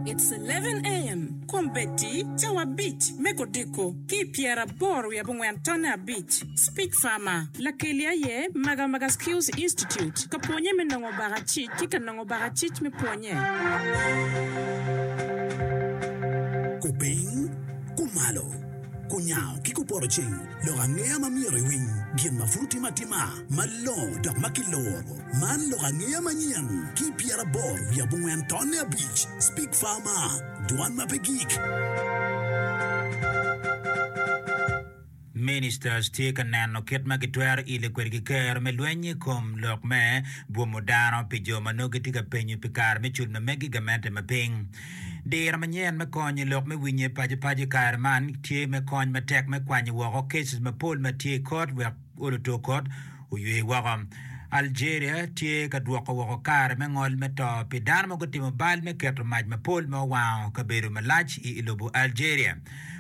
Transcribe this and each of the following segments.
It's eleven AM Kombeddi cawa abic me kodiko ki i pyeraboro wiye abongwen tonne abic Speech Farmer Lakeli aye Magamaga Skills Institute ka pwonye me nongo baka cic ki ka nongo baka cic me pwonye. Kupiny, kumalo, kunyango ki kuporoceng, lok angeya ma myero iwiny, gin ma pud tim atima, malongo dok ma kiloro. Man lok angeya manyen ki pyerabor wiye abongwen tonne abic, Speak Pharma, dwan ma pe gik. Ministers tye ka neno kit ma gitwero ilo kwede ki Ker me lweny i kom lok me bwomo dano pi jo ma nongo gitye ka penyo pi kare me cul ma megi gamente ma piny. Diro manyen me konyo lok me winye pacopaco i kare man tye me kony matek me kwanyo woko cases mapol ma tye i kot wek olo tur kot oywe woko. Algeria tye ka dwoko woko kare me ngol me to pi dano ma gutimo bal me keto mac mapol ma owango kabedo malac i lobo Algeria.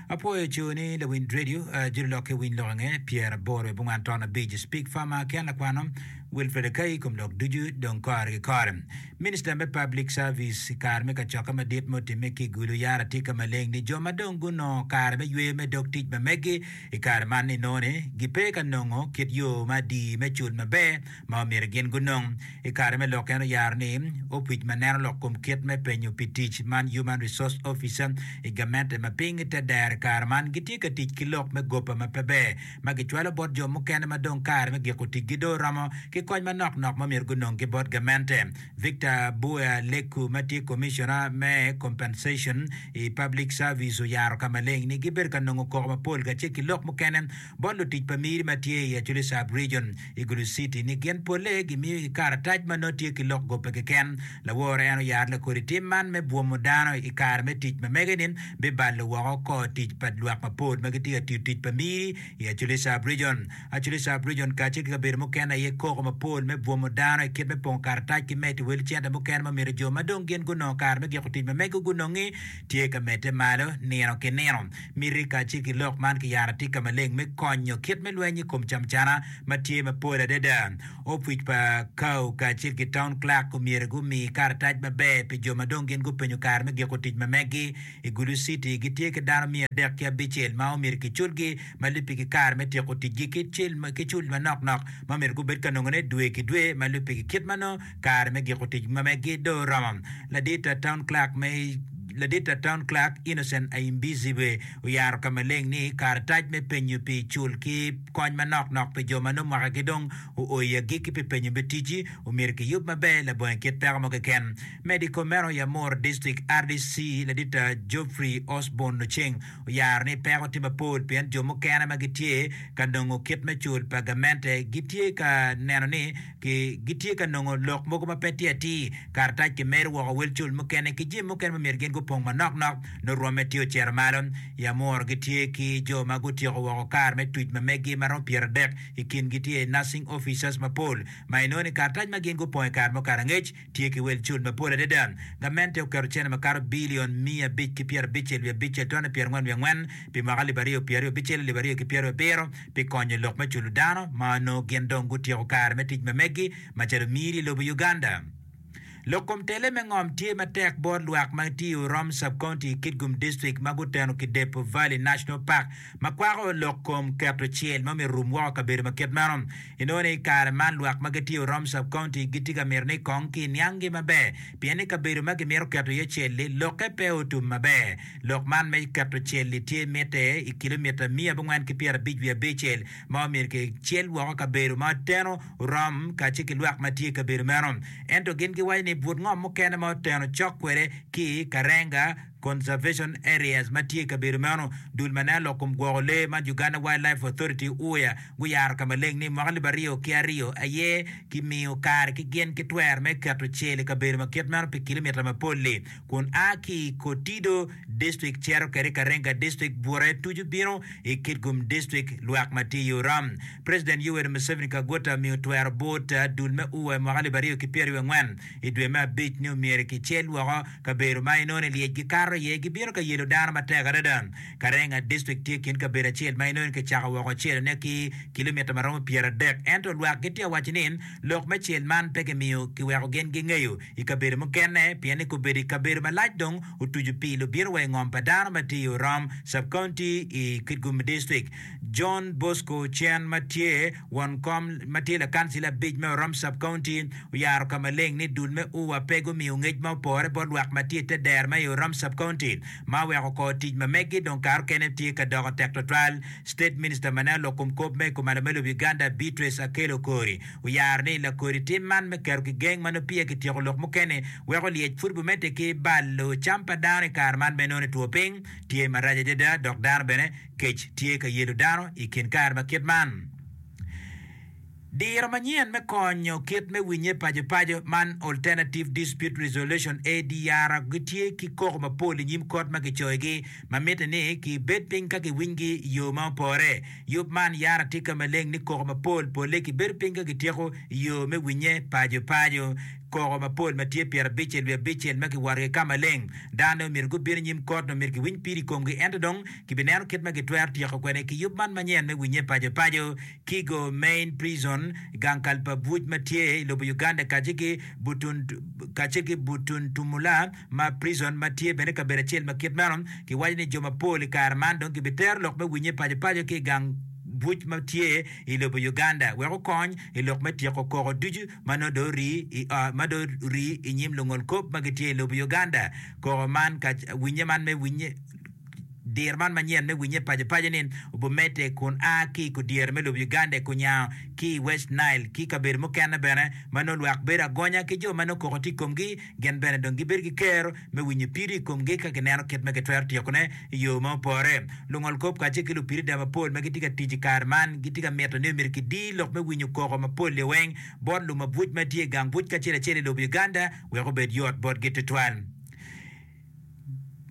Apwoyo co ni lawind radio, jolo lok ki winy lok ange, pyer aboro i bungwan ton abic, Speak Farmer, Ken Lakwano, Wilfred Akai, kom lok ducu dong kore ki kore. Minister me Public Service i kare me kacokke madit ma otimme ki i Gulu yaro atika maleng ni jo ma dong gunongo kare me yweyo me dog tic ma meggi I kare man inongo ni gipe ka nongo kit yo ma adii me cul maber ma omyero gin gunong. I kare me lok en oyaro ni opic ma neno lok kom kit me penyo pi tic man Human Resource Officer i gamente ma piny i te dero i kare man gitye ka tic ki lok me gopa ma pe ber ma gicwalo bot jo mukene ma dong kare me giko ticgi dong oromo ki kony manok nok ma myero gunong ki bot gamente. Victor Bua Leku ma tye Commissioner me Compensation i Public Service oyaro ka maleng ni gibedo ka nongo koko mapol kacel ki lok mukene bot lutic pa miri ma tye i Acholi Sub Region i Gulu City ni gin polle gimiyo i karatac ma nongo tye ki lok gope keken. Lawor en oyaro lakodi tim man me bwomo dano i kare me tic ma mege ni bibalo woko kor tic pa lwak mapol ma gitye ka tiyo tic pa miri i Acholi Sub Region. Archbishop Region kacel ki kabedo mukene aye koko mapol me bwomo dano i kit me pongo karatac ki medo i wel cente mukene ma myero jo ma dong gin gunongo kare me giko tic ma mego gunongi tye ka medde malo nino ki nino. Miti kacel ki lok man kiyaro atika maleng me konyo kit me lweny i kom camcana ma tye mapol adada. Opwic pa Cow kacel ki Town Clerk omyero gumi karatac maber pi jo ma dong gin gupenyo kare me giko tic ma megi. I Gulu City, gitye ki dano miya adek ki abicel ma omyero kiculgi ma lubbe ki kare me tyeko ticgi ki cil ki cul manok nok ma omyero gubed ka nongone dwe ki dwe ma lubbe ki kit ma nongo kare me giko tic ma megi dong oromo. Ladit a Town Clerk me Ladit a Town Clerk Innocent Ayimbizibwe oyaro ka maleng ni karatac me penyo pi cul ki kony manok nok pi jo ma nongo mwakagi dong oo i agikki pi penyo me ticci omyero kiyub maber labongo i kit peko mo keken Medo i kom meno, Yamor District rdc ladita Geoffrey Osborn Oceng oyaro ni peko tye mapol pien jo mukene ma gitye ka nongo kit me cul pa gamente gitye ka neno ni gitye ka nongo lok mogo ma pe tye atir. Karatac kimedo woko wel cul mukene ki jami mukene ma myero gin gupong manok nok nongo rwomme tye ocito malo. Yamor gitye ki jo ma gutyeko woko kar me tic ma megi ma romo pyeradek, i kingi tye nursing officers mapol ma inongo ni karatac ma gin gupong i kare mukato angec. tye ki wel cul mapol adada. Gamente oketo cene makato bilion miya abic ki pyerabic-cel wiye abic-ce atonde pyerangwen wiye angwen pi mwaka alip aryo pye aryo abicel alip aryo ki pyeraryo abiro pi konyo lok me culo dano ma onongo gin dong gutyeko kare me tic ma megi macalo miri i lobo Uganda. Lok kom tele me ngom tye matek bot lwak ma tye i Urom Sub-County i Kitgum District ma guteno ki Depo Valley National Park ma kwako lok kom keto cel ma myero orum woko i kabedo ma kit meno. Inongo ni i kare man lwak ma gitye i Orom Sub-County gitye ka mito ni kong kinianggi maber pien ni kabedo ma kimito keto iye cel-li lokke pe otum maber. Lok man me keto cel-li tye mitte i kilomita miya abongwen ki pyerabic wiye abicel ma omyero kicel woko kabedo ma oteno Orom kacel ki lwak ma tye i kabedo meno. Ento gin giwaco ni but ngom mukene ma oteno cok kwede ki Karenga Conservation Areas, ma tye i kabedo meno. Dul ma nen lok kom gwoko lee ma Uganda Wildlife Authority, UWA, guyaro ka maleng ni mwaka alip aryo ki aryo aye kimiyo kare ki gin ki twero me keto cel i kabedo ma kit meno pi kilomita mapol-li kun a ki i Kotido District cito kwede i Karenga District, Bute tucu bino i Kitgum District, lwak ma tye i Oram. President Yoweri Museveni Kaguta omiyo twero but dul me UWA i mwaka alip aryo ki pyeraryo angwen. I dwe me abic ni omyero kicel woko kabedo ma inongo ni lyec gikato iye, gibino ka yelo dano matek adada. Karenga District tye kin kabedo acel ma inongo ni kicako woko celone ki kilomita ma romo pyeradek, ento lwak gitye ka waco ni lok me cel man pe kimiyo kiweko gin gingeyo i kabedo mukene pien ni kobedo i kabedo malac dong otucu pi lubito wa i ngom pa dano ma tye i Orom Sub-County i Kitgum District. John Bosco Cen ma tye. Won kom ma tye lakancila abic me Orom Sub-County oyaro ka maleng ni dul me UWA pe gumiyo ngec ma opore bot lwak ma tye i te dero ma i Orom Sub-County ma oweko kor tic ma meggi dong kato kene tye ka doko tek twatwal. State Minister ma nen lok kom kop ma i kom alo me lobo Uganda Beatrice Akello Okori oyaro ni lakodi tim man me keto ki geng ma nongo peya ki tyeko lok mukene weko lyec pud bumedde ki balo cam pa dano i kare man me nongo ni two piny tye marac adada dok dano bene Kec tye ka yelo dano i kin kare ma kit man. Diro manyen me konyo kit me winye pacopaco man Alternative Dispute Resolution, ADR, gitye ki koko mapol i nyim kot ma kicoyogi ma mitte ni kibed piny ka kiwinygi i yo ma opore. Yub man yara tika maleng ni koko mapol polle kibedo piny ka kityeko i yo me winye pacopaco. Koko mapol ma tye pyerabicel wiye abicel ma kiworogi i Ka Maleng. Dano myero gubin i nyim kot nyo myero giwiny pid i komgi ento dong kibineno kit ma gitwero tyeko kwede ki yub man manyen me winye paco paco. Kigo Main Prison, gang kal pa buc ma tye i lobo Uganda kacel ki Butun kacel ki Butuntumula ma Prison ma tye bene kabedo acel ma kit meno. Kiwaco ni jo mapol i kare man dong kibitero lok me winye paco paco ki i gang buc ma tye i lobo Uganda wek okony i lok me tyeko koko ducu ma nongo dong orii i nyim lungol kop ma gitye i lobo Uganda. Koko man, winye man me winye, diro man manyen me winye pacopaco-ni obumedde kun a ki i kudyere me lobo Uganda i Kunyango ki i West Nile ki i kabedo mukene bene ma nongo lwak bedo agonya ki jo ma nongo koko tye i komgi gin bene dong gibedo ki kero me winyo piri i komgi ka gineno kit ma gitwero tyekone i yo ma opore. Lungol kop kacel ki lupirida mapol ma gitye ka tic i kare man gitye ka mito ni myero kidi lok me winyo koko mapol liweng bot lumabwuc ma tye i gang buc kacel acel i lobo Uganda wek obed yot botgi tutwal.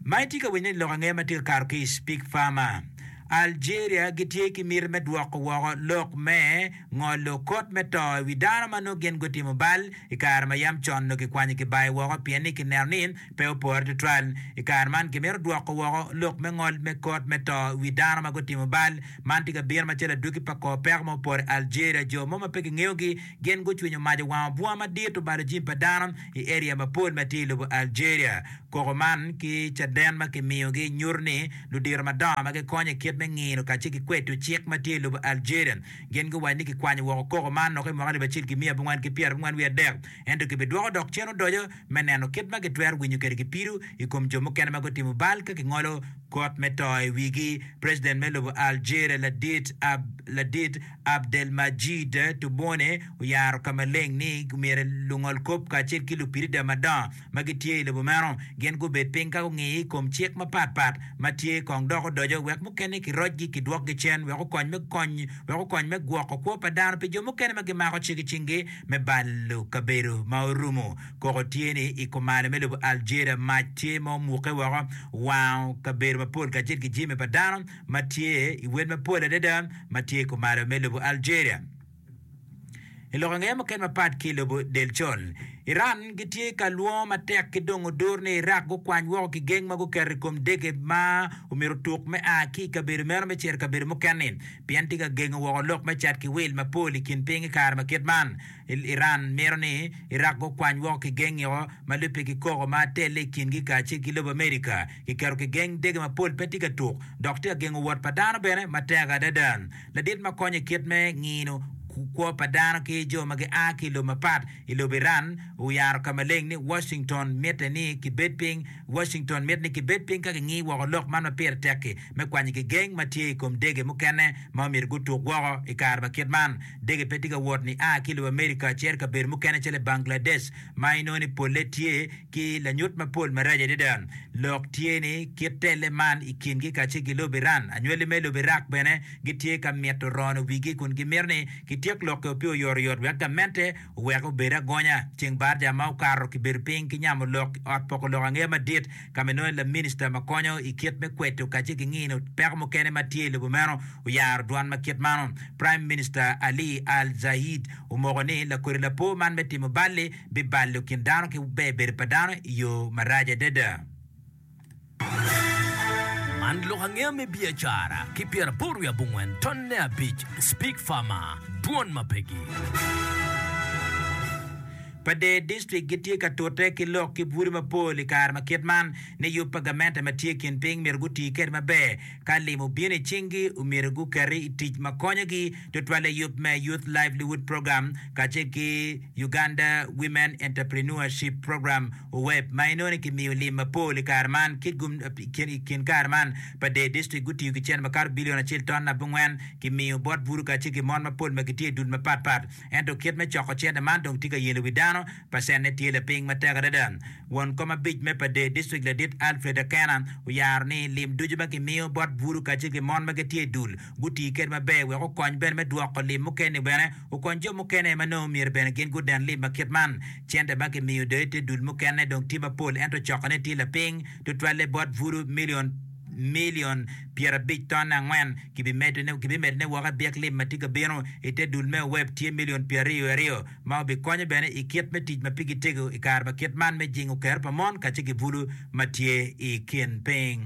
Ma itye ka winyo ni lok ange ma tye ka kato ki i Speak Farmer? Algeria gitye ki miti me dwoko woko lok me. ngolo kot me to i wi dano ma nongo gin gutimo bal i kare ma yam con nongo kikwanyo kibayo woko pien ni kineno ni pe opore tutwal. I kare man, kimito dwoko woko lok me ngol me kot me to i wi dano ma gutimo bal. Man tye ka bino macalo adwogi pa kor peko ma opore i Algeria. Jo mo ma pe kingeyogi gin gucwinyo mac owango bunga madit obalo jami pa dano i eria mapol ma tye i lobo Algeria. Koko man ki caden ma kimiyogi nyuto ni ludito madongo ma gikonyo i kit me ngino kacel ki kweto cik ma tye i lobo Algeria Gin guwaco ni kikwanyo woko koko man noko i mwaka alip acel ki miya abongwen ki pyera abongwen wiye adek, ento kibidwoko dok cen odoco me neno kit ma gitwero winyo kwede ki pido i kom jo mukene ma gutimo bal ka kingolo kot me to i wigi. President me lobo Algeria ladit ladit Abdelmadjid Tebboune oyaro ka maleng ni myero lungolkop kacel ki lupirida madongo ma gitye i lobo meno gin gubed piny ka gungiyo i kom cik mapat pat ma tye kong dok odoco wek mukene kirocgi kidwokgi cen wek okony me kony wek okony me gwoko kwo pa dano pi jo mukene ma gimako cik i cingi me balo kabedo ma orumo koko tye ni i kumalo me lobo Algeria mac tye ma omuke woko wango kabedo mapol kacel ki jami pa dano ma tye i wel mapol adada ma tye i kumalo me lobo Algeria. I lok angeya mukene mapat ki i lobo del col, Iran gitye ka lwongo matek ki dongo dur ni Iraq gukwany woko kigeng ma guketo i kom dege ma omyero otuk me a ki i kabedo meno me cito i kabedo mukene-ni pien tye ka gengo woko lok me cat ki wil mapol i kin piny i kare ma kit man. Iran mito ni Iraq gukwany woko kigeng-ngi o ma lubbe ki koko ma telle i kingi kacel ki lobo America. Kiketo kigeng dege mapol pe tye ka tuk dok tye ka gengo wot pa dano bene matek adada. ladit ma konyo i kit me ngino kwo pa dano ki jo ma gia ki i lobe mapat i lobo Iran oyaro ka maleng ni Washington mitte ni kibed piny Washington mitte ni kibed piny ka kingi woko lok man ma pire tek-ki me kwanyo gigeng ma tye i kom dege mukene ma myero gutuk woko i kare ma kit man. Dege pe tye ka wot ni a ki i lobo Amerika cito i kabedo mukene calo i Bangladesh ma inongo ni polle tye ki lanyut mapol marac adada. Lok tye ni, kit telle man i kingi kacel ki lobo Iran, anywali me lobo Iraq bene gitye ka mito rono wigi kun gimito ni kityek lokeo pi oyotoyot wek gamente owek obed agonya. Ceng barca ma okato kibedo piny ki nyamo lok i Ot Poko Lok Angeya Madit ka ma inongo ni laminista ma konyo i kit me kweto kacel ki ngino peko mukene ma tye i lobo meno oyaro dwan ma kit mano. Prime Minister Ali Al-Zaid omoko ni lakodi lapor man me timo balli bibalo kin dano ki ber bedo pa dano i yo marac adada. Man lok angeya me biacara ki pyeraboro wiye abongwen tonne abic Speke Farmer, Dwon ma pegi. Pa dee district gitye ka tute ki lok ki bute mapol i kare ma kit man ni yub pa gamente ma tye kin piny myero guti kede maber ka lim obino i cingi omyero guketi i tic ma konyogi tutwale yub me Youth Livelihood Program kacel ki Uganda Women Entrepreneurship Program, UWEP, ma inongo ni kimiyo lim mapol i kare man ki gum i kin kare man pa dee distrik gutiyo ki cente makato bilion acel ton abongwen kimiyo bot buru kacel ki mon mapol ma gitye i dul mapat pat. Ento kit me coko cente man dong tye ka yelo wi dano, pacenne tye lapiny matek adada. Won kom abic me pa dee distrik ladit Alfred Akena oyaro ni lim ducu ma kimiyo bot buru kacel ki mon ma gitye i dul guti kede maber wek okony bene me dwoko lim mukene-ni bene okony jo mukene ma nongo myero bene gin guden lim ma kit man. Cente ma kimiyo doyo te dul mukene dong tye mapol ento cokone tye lapiny tutwalle bot buru milion milion pyerabic ton angwen. Kibimedone woko i byek lim ma tye ka bino i te dul me Oweb tye milion pyeraryo wiye aryo ma obikonyo bene i kit me tic ma pigi tego i kare ma kit man me jingo kero pa mon kacel ki bulu ma tye i kin piny.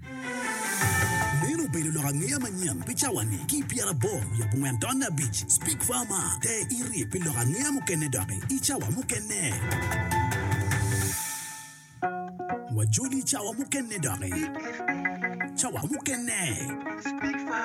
Meno obedo lok angeya manyen pi cawa-ni. Ki i pyerabor wiye abongwen taun abic, Speke Farmer te irye pi lok angeya mukene doki i cawa mukene. Wajoli i cawa mukene doki. Cawa mukene.